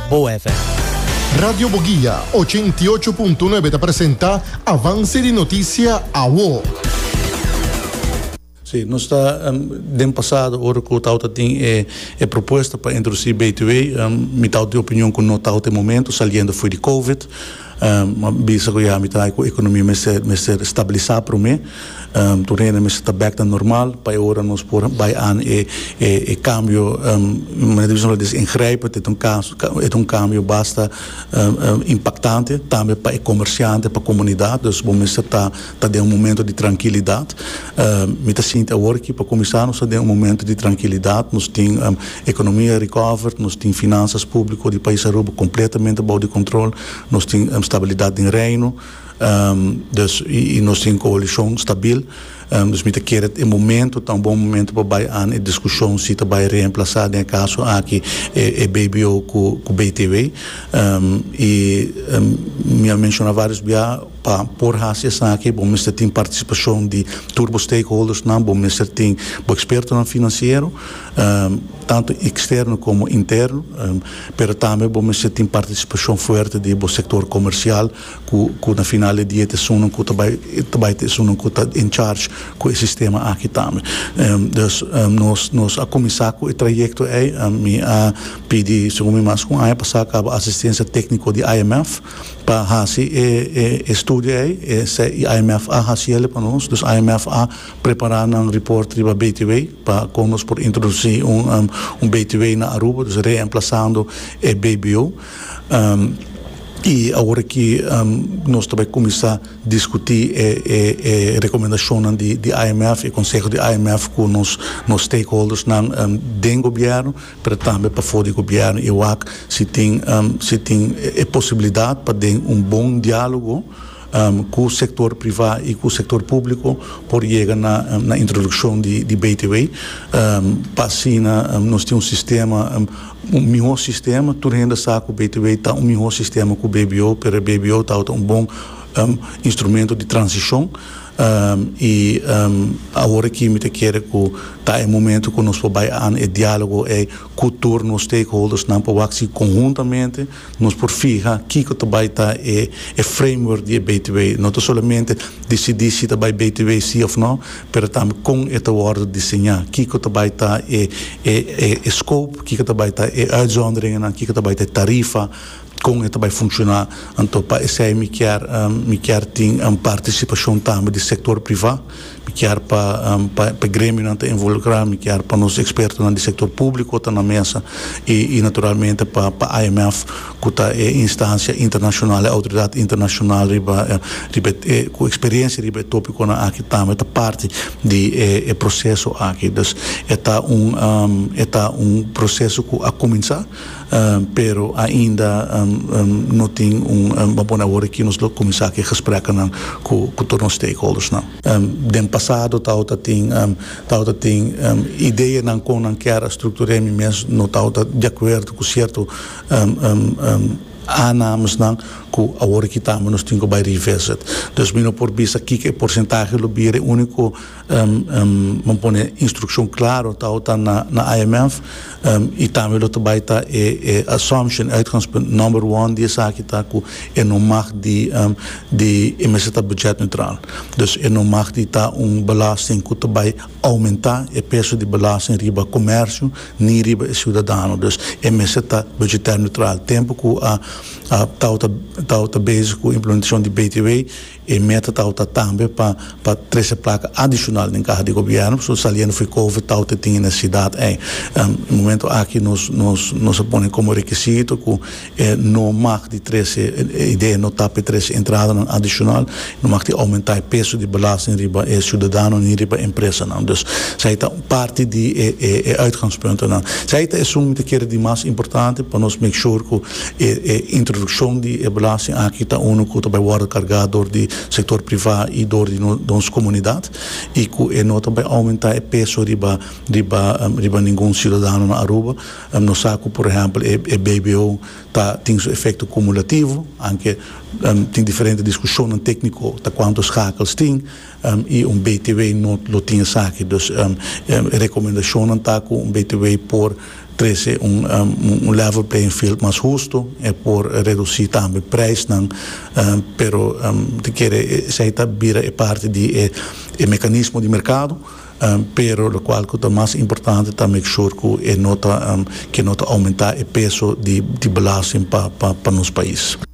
Bo FM. Radio Boguia ochenta i ocho punto nuebe ta presenta Avance di Noticia Awo. Si, nos ta den pasado ora cu tabatin tin e propuesta pa introduci BTW, mitad di opinion cu no tabata e momento, saliendo fo'i di Covid. Bo a bisa ku ya mi ta haña ku ekonomia mester mester stabilisa promé. Tur hende mester ta bek na normal pa e ora nos por bai an e e e kambio manera di bisonan dese ingrijpend. Esta un kaso esta un kambio basta impaktante tambe pa e komersjante pa komunidat. Dus bo mester ta. Ta den un momento di trankilidat. Mi ta sinti awor aki pa kuminsá nos ta den un momento di trankilidat. Nos tin ekonomia recovered, nos tin finansas públiko di pais Aruba kompletamente bou di kontrol, nos tin stabilidat den reino, dus i nos tin koalishon stabil. Dus mi ta kere e momento ta un bon momento pa bai an e diskushon si ta bai reemplasá den e kaso aki e BBO ku BTW. I mi a menshoná vários biaha. Pa por hasi esaki bo mester tin participacion di tur bo stakeholdersnan, bo mester tin bo expertonan financiero, tanto externo como interno, pero tambe bo mester tin participacion fuerte di bo sector comercial cu na final di dia ta esunnan cu ta bay ta bay ta esunnan cu ta en charge cu e sistema aki tambe. Dus nos nos a cuminsa cu e trayecto ey, mi a pidi segun mi mas cu un aña pasa caba asistencia tecnico di IMF, Pa hasi e estudio ei, esei IMF a hasi el pa nos. Dus IMF a prepará nan report riba BTW pa kon nos por introdusí un BTW na Aruba, dus reemplasando e BBO. I awor aki nos ta bai kuminsá diskutí e rekomendashonnan di IMF, e konsehonan di IMF ku nos stakeholdersnan den gobièrnu. pero tambe pafó di gobièrnu i wak si tin si tin e posibilidat pa den un bon diálogo ku sektor privá i ku sektor públiko por yega na na introdukshon di di BTW pa asina nos tin un sistema un mihó sistema tur hende a sa ku BTW ta un mihó sistema ku BBO pero e BBO tabata un bon instrumento di transishon. I awor aki mi ta kere ku ta e momento ku nos por bai an e dialogo ei ku tur nos stakeholdersnan pa wak si konhuntamente nos por fiha kiko ta bai ta e e framework di e btw. No ta solamente disidí si ta bai btw si òf nò, pero tambe kon e ta wòrdu diseñá, kiko ta bai ta e e e scope, kiko ta bai ta e uitzonderingennan, kiko ta bai ta e tarifa, Kon e ta bai funshoná? Anto pa esei mi kier mi kier tin partisipashon tambe di sektor privá. Mi kier pa pa e gremionan ta involukrá, mi kier pa nos ekspertonan di sektor públiko ta na mesa i i naturalmente pa pa IMF ku ta e instansia internashonal, e outoridat internashonal riba riba e ku eksperiensia riba e topikonan aki tambe ta parti di e e proseso aki. Dus e ta un e ta un proseso ku a kuminsá. Pero ainda no tin un bo pone awor aki nos lo cuminsa ki gesprekennan cu tur nos stakeholdersnan. Den pasado tabata tin tabata tin ideanan con nan kier a structure mi mes no tabata di acuerdo cu cierto aanamesnan cu awor aki tambe nos tin cu bay revisit. Dus mi no por bisa kiko e porcentahe lo bira e unico Bo pone instrukshon klaro tao ta na IMF i tambe lo ta bai ta e assumption, uitgangspunt, nòmber one di esaki ta ku e no mag di di e mester ta bùdjèt neutral. Dus e no mag di ta un belàsting ku ta bai oumentá e peso di belàsting riba komèrsio ni riba e siudadano. Dus e mester ta bùdjetèr neutral. Tempu ku tao ta tao ta bezig ku implementashon di BTW. E meta tawata tambe pa pa trese plaka adishonal den kaha di gobièrnu, pasobra saliendo for di covid tawata e tin e nesesidat ei. Momento aki nos nos nos a pone komo rekisito ku e no mag di trese, e idea no ta pa e trese entradanan adishonal, no mag tin oumentá e peso di belasting riba e siudadano ni riba e empresanan. Dus esei ta un parti di e e e uitgangspuntonan. Esei ta esun mi ta kere di mas importante pa nos make sure ku. E e introduccion di e belasting aki ta uno cu ta bay wordo carga door di sector priva y door di nos comunidad y cu e no ta bay aumenta e peso riba riba riba ningun ciudadano na Aruba. Nos sa cu por ehempel e e BBO ta tin su efecto cumulativo anke tin diferente discusionnan tecnico ta cuanto schakels tin. y un btw no lo tin esaki. Dus e recomendashonnan ta cu un btw por trece un un level playing field mas husto, e por reduci tambe prijsnan, pero ta kere esey ta bira e parti di e e mecanismo di mercado, pero locual cu ta mas importante ta make sure cu e no ta ke no ta aumenta e peso di di belasting pa pa pa nos pais.